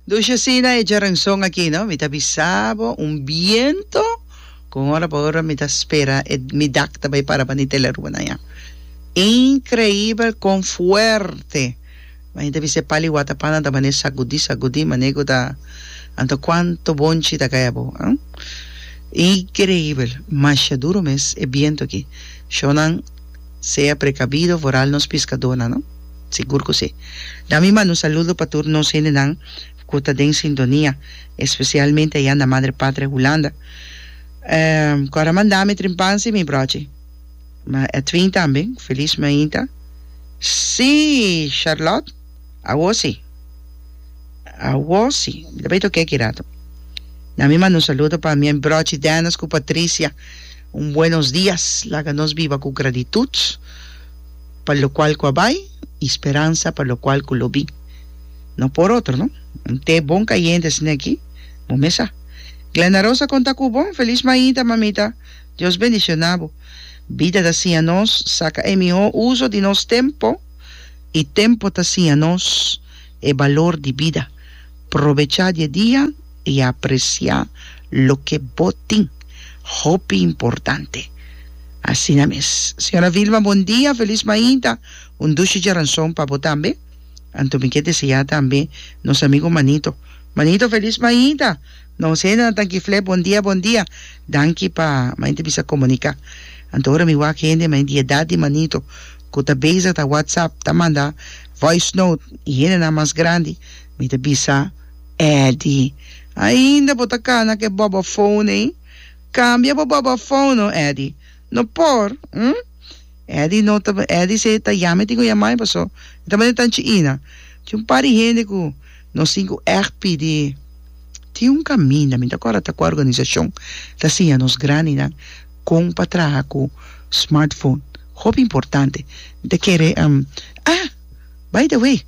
Dusha asina e djaranson aki no mi ta bisa bo un biento con ora pa ora mi ta spera e mi dak ta bay para pa ni tele rua nan ya increibel con fuerte bay mi ta bisa e pali wata pana ta mane sagudi sagudi mane cu ta anto cuanto bonchi ta caya bo ah increibel masha duro mes e biento aki show nan Sea precabido vooral nos piscadónan, no? Sigur cu sí. Dami manda un saludo pa tur nos hendenan cu ta den sintonia, especialmente ayá na Madre Patria Hulanda. Cu a ramanda mi trimpansi, mi brochi? Ma Edwin tambe, feliz mainta. Sí, Charlotte, awor sí. Awor sí. Mi ta bay tokey aki rato. Dami manda un saludo pa mi brochi Dennis cu Patricia. Un buenos dias, laga nos biba cu gratitud pa locual cu a bay y speransa pa locual cu lo bin. No por otro, no? Un te bon cayente esne aki, bo mes sa. Glenda Rosa conta cu bo, Feliz maita, mamita, Dios bendiciona bo. Bida ta siña nos saca e miho uzo di nos tempo y tempo ta siña nos e balor di bida. Probecha di e dia. i apresiá loke bo tin, hopi importante. Asina mes. Señora Vilma, bon dia, felis mainta, un dushi djaranson pa bo tambe. Anto mi ke deseá tambe nos amigo Manito. Manito, felis mainta! Nos hendenan ta ki flè bon dia, bon dia. Danki pa mainta bisa komuniká. Anto ora mi wak hende mai di edat di Manito ku ta bezig ta whatsapp, ta manda voice note, i hendenan mas grandi, Mi ta bisa Eddy, Ainda bo ta cana cu e boba foon ey? Cambia bo boba foon no Eddy. No por, hm? Eddy no ta, Eddy sey ta ya mi tin cu ya mai paso e ta manda tanchi ina. Tin un par di hende cu no sin cu echt pidi. Tin un caminda, mi ta cora ta cu a organisacion ta siña nos grandinan con pa traha cu smartfoon. Hopi importante. Mi ta kere, hm, ah, by the way.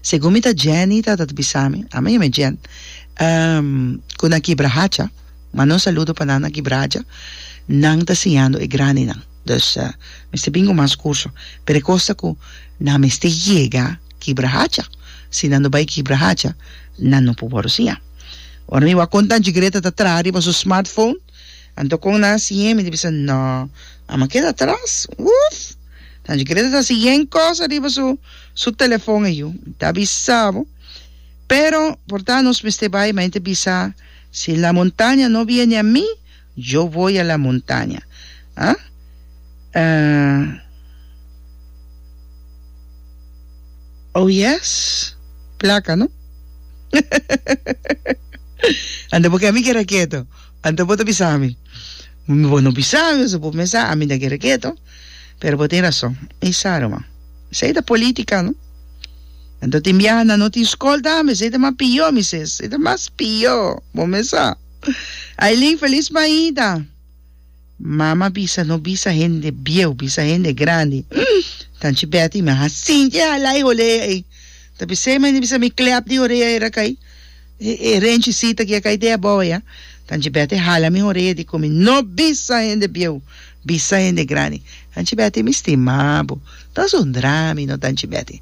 Segun mi ta Jenny ta ta bisa mi, a mi yam e Jen, ku na kibra hacha, manda un saludo pa nan na kibra hacha, nan ta siñando e grandinan, dus mester bin ku mas kurso, pero e kos ta ku nan mester yega kibra hacha, si nan no bai kibra hacha nan no por wòrdu siñá. Ora mi wak kon Tanchi Greta ta traha riba su smartphone. Anto con nan si yen mi di bisa no amo a keda atras uff nan dje kere ta si yen cosa riba su su telefon a yu ta bisa bo pero por ta nos mester bay ma ente bisa si la montaña no viene a mi yo voy a la montaña ah oh yes placa no ando porque a mi keda keto. Anto bo ta bisa ami? Bo no bisa ami pasobra bo mesa ami ta kere ketu. Pero bo tin rason. Mi sa ruman. Esei ta politica no. Anto tin biaha nan no tin scol ta ami. Esei ta mas pior mi ses. Esei ta mas pior. Bo mesa. Ailin feliz maida. Mama bisa no bisa hende bieu bisa hende grandi umm ta nchi Betty mi a hasi nchi e hala e holea ei ta p'esei mi a bisa mi klep di horea era kai e renchicita ki a kai dea boa ya ta nchi Betty a hala mi horea di komi no bisa hende bieu bisa hende grandi ta nchi Betty mi stima bo ta asundra mi no ta nchi Betty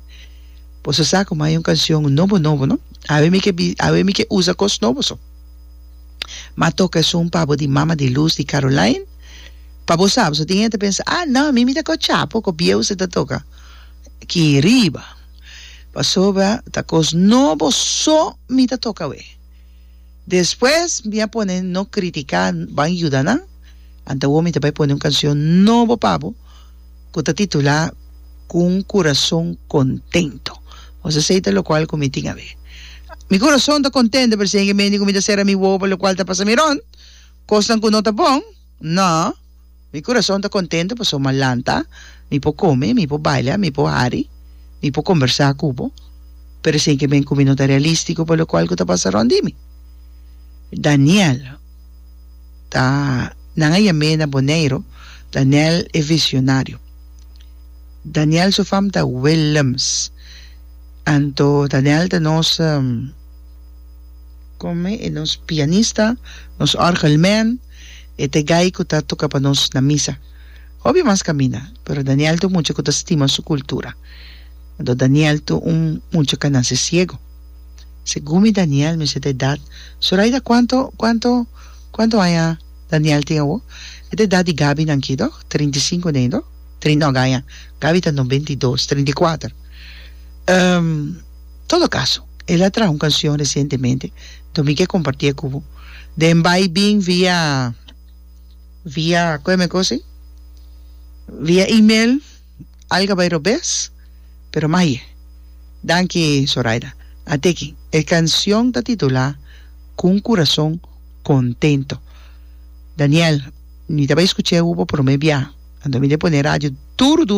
bo so sa komo hay un cancion nobo nobo no awe mi ke awe mi ke usa cos nobo so. Ma toca esun pa bo di mama di luz di Caroline? Pa bo sab so tin hende ta pensa, ah no mi mi ta cos chapo cu bieusa e ta toca aki riba. Pasobra ta cos nobo so mi ta toca awe. Despues mi a pone no critica, ban yuda nan, anta awor mi ta bay pone un cancion nobo pa bo. ku ta titulá Ku un kurason kontento. Nos a seita lokual ku mi tin ab'é. Mi kurason ta kontento pero si hende mende ku mi ta sera mi wowo pa lokual ta pasa mi rònt kosnan ku no ta bon? No. Mi kurason ta kontento pasobra mi a lanta, mi por kome, mi por baila, mi por hari, mi por kombersá ku bo, pero si hende mende ku mi no ta realístiko pa lokual ku ta pasa rònt di mi. Daniel. ta nan a yam'é na Boneiru Daniel e visionario. Daniel su fam ta Willems. Anto Daniel ta nos kome e nos pianista, nos orgelman, e ta e gai ku ta toka pa nos na misa. Hopi mas kaminda, pero Daniel ta un mucha ku ta stima su kultura. Anto Daniel ta un mucha ku a nase siegu. Segun mi Daniel mi seta edat Zoraida cuanto cuanto cuanto aña Daniel tin awo? E ta edat di Gaby nan aki toch? Trinta i sinku n'ey toch? Trin no Gaia Gaby ta noventa i dos trinta i kuater um todo caso el a traha un cancion recientemente enton mi ke compartie cu bo den bay bin via via cu e men cosi via email. Alga bai robes pero maye. Danki Zoraida. A teken e cancion ta titula Cu un curason contento. Daniel, mi ta bai scuch'e u pa prome bia, anto mi ta pone radio duru duru.